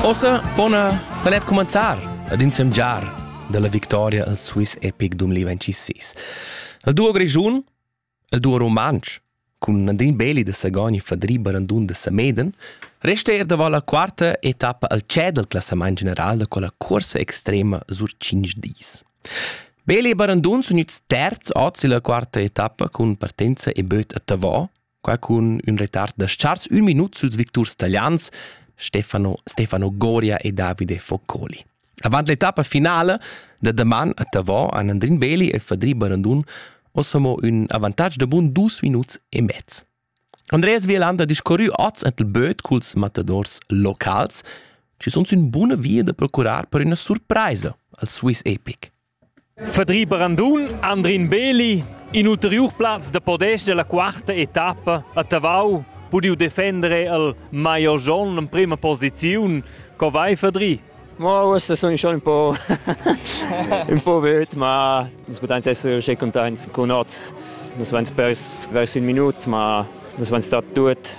Ossa, bona, planet comenzar ad insemgiar dalla victoria al Swiss Epic 2026. Il duo grischun, il duo rumantsch, cun Nadine Beli da Sagogn e Fadri Barandun da Sameden, resta er davant la quarta etappa al CE dal classament general da quella cursa extrema sur 5 dis. Beli e Barandun sono its terz oz illa quarta etappa cun partenza e böt a Tavò Qua cun ün retard da chars ün minut suls victurs talians Stefano, Stefano Goria e Davide Foccoli. Avant l'etappa finale da daman a Tavò han Andrin Beli e Fadri Barandun ossamo ün avantatg da bun dus minuts e mezz. Andreas Vielander discorrü oz et il böt culs matadors locals, ci sunt ün buna via da procurar per üna surpraisa al Swiss Epic. Fadri Brandun, Andrin Beli, in ulteriur plaz da podest della quarta etappa a Tavau pudiu defendere al Maio Jon in prima posiziun. Co vai Fadri? Ma queste sono schon un po', un po' wild, ma nus poteins essere uscì contents con oz. Nus waren vers, vers un minut, ma nus waren stati tut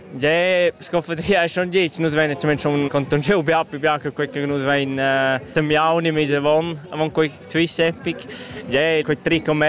Ge sconfetria e schon dic, nus vein schon conton jeu bia più bia che quei che nus vein semmiauni mis avon avon quei zwis epic. Ge quei trick om